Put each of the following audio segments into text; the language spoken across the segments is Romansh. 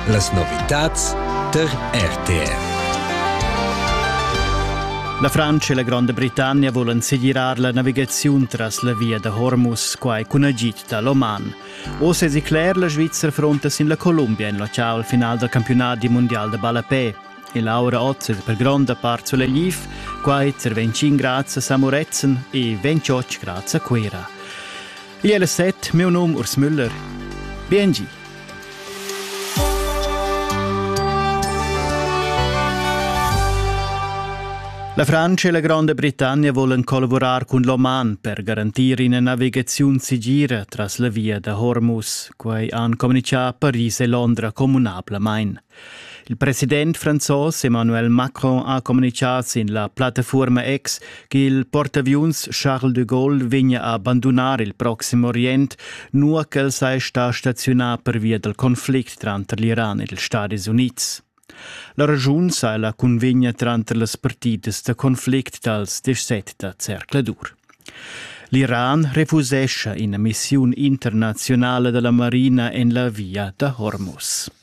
Las novitads tar RTR. La Francia e la Gronda Britannia volan segirar la navigaziun tras la via da Hormuz, quai cun agid da l'Oman. Oz è cler, la Svizzera fronta sin la Columbia en locale al final dal campionat mondial da ballapè. E Laura Otzer per gronda part sulla Liv, quai per 25 grads a Samoretzen e 28 grads a Cuira. Lia la set, miu num Urs Müller. Biengi. La Francia e la Gronda Britannia volan collavurar cun l'Oman per garantir ina navigaziun segira tras la via da Hormuz. Quai han communichà Paris e Londra communablamain. Il president franzos Emmanuel Macron ha communicà sin la plattafuorma X ch'il portaviuns Charles de Gaulle vegna a bandunar il Proxim Orient, nua ch'el sei sta staziunà pervia dal conflict tranter l'Iran ed ils Stadis Unids. La ragiun sai la convegna tranter las partidas da conflict dals 17 da Cercladur. L'Iran refusescha ina missiun internazionala della marina en la via da Hormuz.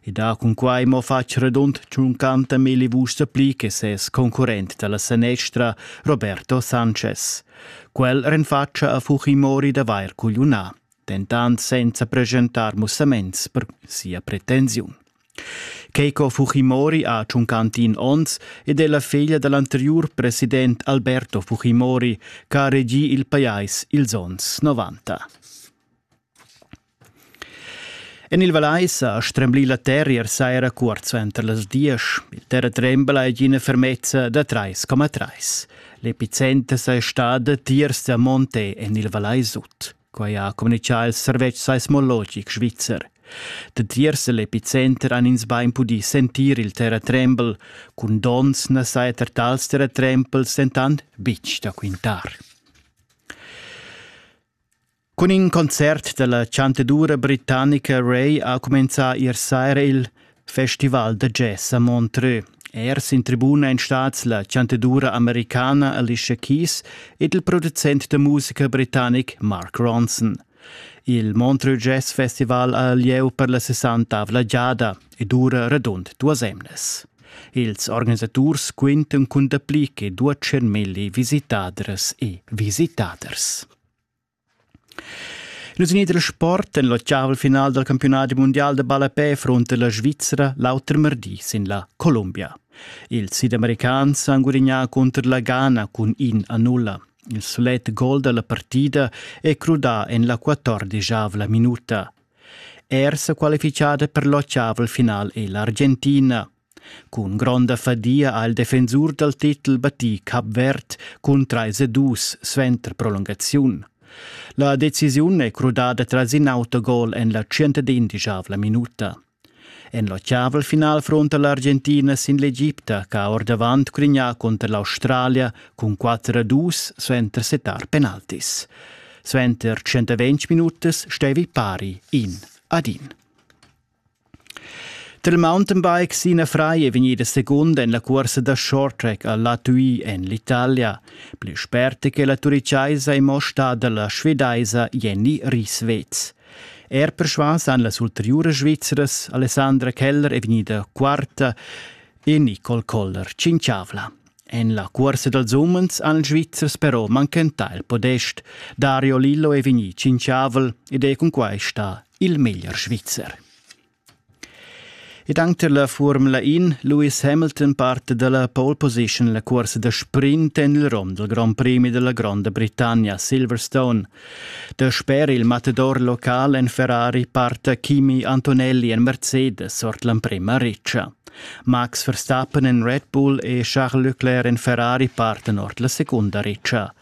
e da cunquai mo fatg redund tschunquanta milli vuschs pli che ses concurrent dalla sanestra Roberto Sanchez. Quel renfatscha a Fujimori d'avair cugliunà, dentant senza presentar mussaments per sia pretensiun. Keiko Fujimori ha tschuncantin onns ed è la figlia dal anteriur president Alberto Fujimori che ha regì il pajais ils onns 90. En il Valais ha stremblì la terrier saira cuort suenter las diesch. Il terratrembla è ina fermezza da 3,3. L'epicenter è stada tiers da Monte en il Valais Sud. Quai ha communitgà il servetsch seismologic svizzer. Da tiers l'epicenter han ins bain pudì sentir il terratrembel. Cun donns na saja er tals terratrembels dentant betg da quintar. Cun in concert dalla chantadura britannica Ray ha cumenzà ier saira il Festival da jazz a Montreux. Er sin tribuna en stats la chantadura americana Alicia Keys ed il producent da musica britannic Mark Ronson. Il Montreux Jazz Festival ha lieu per la sessantavla giada e dura radund duas emnas. Ils organisaturs quintan cun dapli che 200.000 visitaders e visitaders. Nus in dal sport en l'otgavel final dal campiunadi mundial da ballapè frunta la Svizra l'auter mardi sin la Columbia. Ils sidamericans han gudignà cunter la Ghana cun in a nulla. Il sulet gol da la partida è crudà en la quattordischavla minuta. Er sa qualifichada per l'otgavel final è l'Argentina. Cun gronda fadia ha il defensur dal titel battì Cap Verd cun trais e dus suenter prolungaziun. La decisiun è crudada tras in autogol en la tschentadindischavla minuta. En l'ottaval final fronta l'Argentina sin l'Egipta che ha ordavant cunià cunter l'Australia cun 4 a 2 suenter setar penaltis. Suenter 120 minutas stevi pari in ad in. Dal mountainbike Sina Fry è vegnida segunda en la cursa da shorttrack a Latuy en l'Italia. Pli sperta che la turichaisa è mo stada la svedaisa Jenny Rieswetz. Er persvas han las ulteriuras Svizras Alessandra Keller è vegnida quarta e Nicole Koller cinciavla. En la cursa dals umens han ils Svizzers però manchentà il podest. Dario Lillo è vegnì cinciavel ed è cun quai stà il meglier svizzer. Ed anche la Formula In, Lewis Hamilton parte dalla pole position la corsa da sprint en il rom del Grand Prix della Grande Britannia Silverstone. Dasper il matador local en Ferrari parte Kimi Antonelli en Mercedes ord l'emprema riccia. Max Verstappen en Red Bull e Charles Leclerc en Ferrari parten ord la seconda riccia.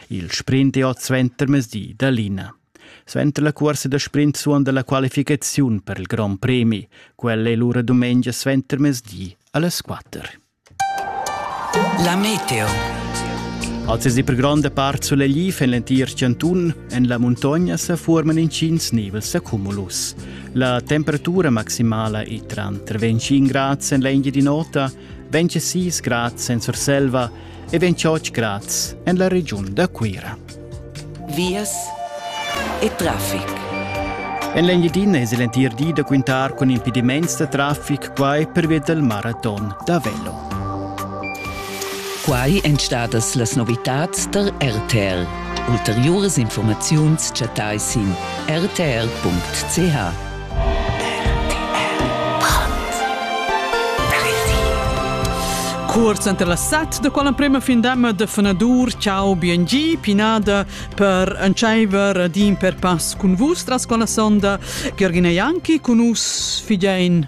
Il sprint è oz ventermesdi da Lina. Suenter la cuorsa da sprint suonda la qualificaziun per il grond premi. Quella è lura dumengia suentermezdi alles 4. La meteo. Als es die per gronda part sulegli en l'entir chantun, en la muntogna se forman incins nivels accumulus. La temperatura maximala è tra 25 grad en l'India di nota, 26 grad en Surselva e 28 grad en la region da Cuira. vias e traffic. En l'Engiadina es l'entir di da quintar cun impediments da traffic quai pervia dal maraton da velo. Quai èn stadas las novitads tar RTL. Ulteriuras informaziuns chattai sin rtl.ch. Cuors enter las set da quella prema findama de fenadur ciao BNG pinada per entscheiver din per pass cun vus tras quella sonda Gergina Janki cun us figein